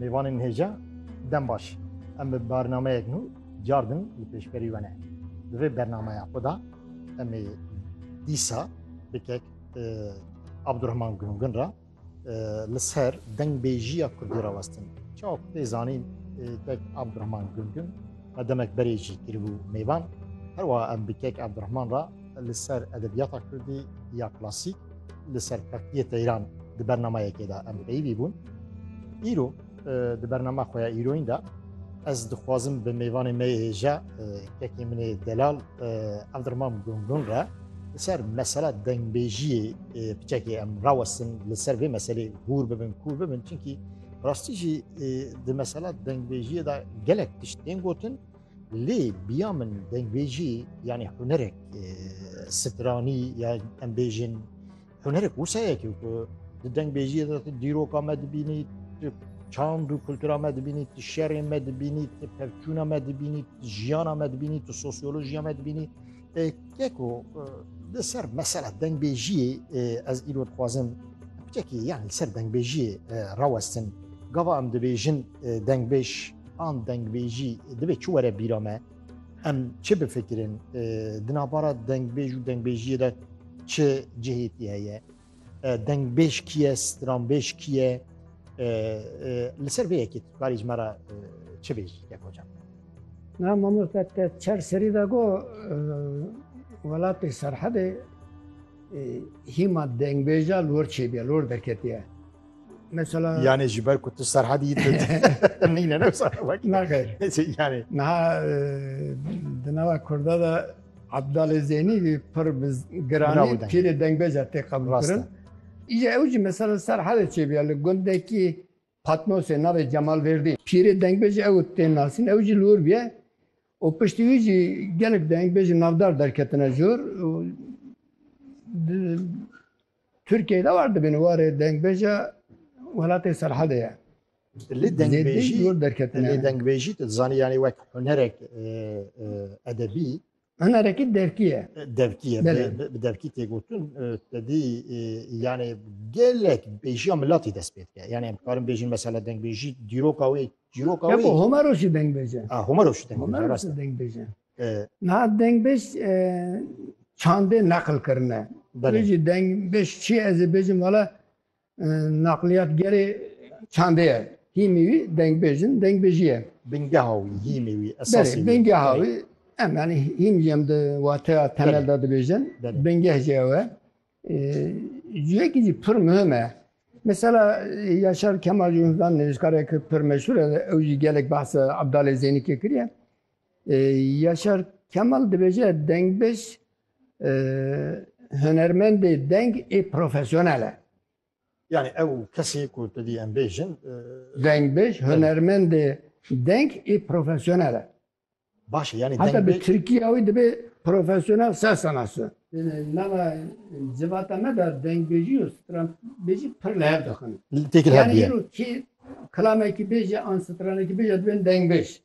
Mêvanên hêja dem baş. Em bi barnameyek nû cardin li pêşberî we ne. Di vê bernameya xwe da em ê dîsa bi kek Abdurrahman Gungin ra li ser dengbêjiya Kurdî ra westin. Çawa ku tê zanîn kek Abdurrahman Gungin me demek berê jî kiribû mêvan. Herwa em bi kek Abdurrahman ra li ser edebiyata Kurdî ya klasîk li ser Partiyê Teyran di bernameyekê de em peyivî bûn. Îro di bernama xwe ya îroyîn de ez dixwazim bi mêvanê me hêja kekê min ê delal Evdirmam Gungun re li ser mesela dengbêjiyê piçekê em rawestin li ser vê meselê hûr bibin kûr bibin çinkî rastî jî di mesela dengbêjiyê de gelek tişt tên gotin Lê biya min dengbêjî yanî hunerek stranî ya em bêjin hunerek wusayekî ku di dengbêjiyê de tu dîroka me dibînî tu çand û kultura me dibînî tu şerê me dibînî tu pevçûna me dibînî tu jiyana me dibînî tu sosyolojiya me dibînî Keko li ser mesela dengbêjiyê ez îro dixwazim bitekî yan li ser dengbêjiyê rawestin. Gava em dibêjin dengbêj an dengbêjî divê çi were bîra me? Em çi bifikirin? Di navbara dengbêj û dengbêjiyê de çi cihêtî heye? Dengbêj kî ye, stranbêj kî ye? Li ser vê yekê tu karî ji me re çi bêjî ya kocan? Na mamoste te çar serî de got welatê Serhedê hîma dengbêja li wir çêbûye, li wir derketiye. Mesela Yani ji ber ku tu serhedî yî tu nîne ne sana bak. nagir. Yani Niha e, di nava Kurda de Abdalê Zeynî wî pir bi Bravo giranî deng. pîrê dengbeja tê qebûl Rast e. kirin. Îje ew jî mesela ser hedê çêbiya li gundekî Patnosê navê Cemal Verdî. Pîrê dengbej ew tên nasîn ew jî li wir bûye û piştî wî jî gelek dengbejî navdar derketine jor û di- Tirkiyeyê de war dibin warê dengbêje welatê Serhedê ye. Lê dengbêjî zor derketine. Lê dengbêjî tu dizanî yanî wek hunerek edebî Hunerekî devkî ye. Devkî ye. Bi devkî tê gotin tedî yanê gelek bêjiya milatî dest pê dike. Yanê em dikarin bêjin mesela dengbêjî dîroka wê dîroka wê. Homa roşî dengbêje. Homa roşî dengbêje. Homa roşî dengbêje. Niha dengbêj çandê neql kirine. Belê. Wê jî dengbêj çi ye? Ez ê bêjim wala naqliyatgerê çandê ye. Hîmî wî dengbêj in, dengbêjî ye. Bingeha wî, hîmî wî, esasî wî. Belê, bingeha wî. Em yanî hîm jî em di wateya temel de dibêjin. Belê. Bingeh jî ew e. Cihekî jî pir muhim e. Mesela Yaşar Kemal Cumhurbaşkanı nivîskarek pir meşhur e, ew jî gelek behsa Abdalê Zênîkê kiriye. Yaşar Kemal dibêje dengbêj hunermendê deng ê profesyonel e. Yani ew kesê ku tu dî em bêjin. Dengbêj hunermendê deng ê profesyonel e. Baş e yani dengbêj. Heta bi Tirkiya wî dibe profesyonel ser sanatçi. Nava civata me de dengbêjî û stranbêjî pir li hev dixin. Têkil hev bûye. Yani îro kê kilamekî bêje an stranekî bêje dibên dengbêj.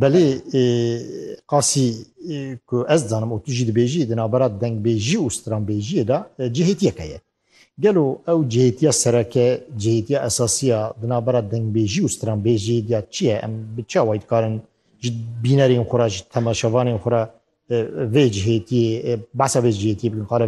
Belê qasî ku ez dizanim û tu jî dibêjî di navbera dengbêjî û stranbêjiyê de cihêtiyeke ye. Gelo ew cihêtiya sereke, cihêtiya esasî ya di navbera dengbêjî û stranbêjiyê de çi ye? Em bi çi awayî dikarin ji bînerên xwe re, ji temaşevanên xwe re vê cihêtiyê behsa vê cihêtiyê bikin?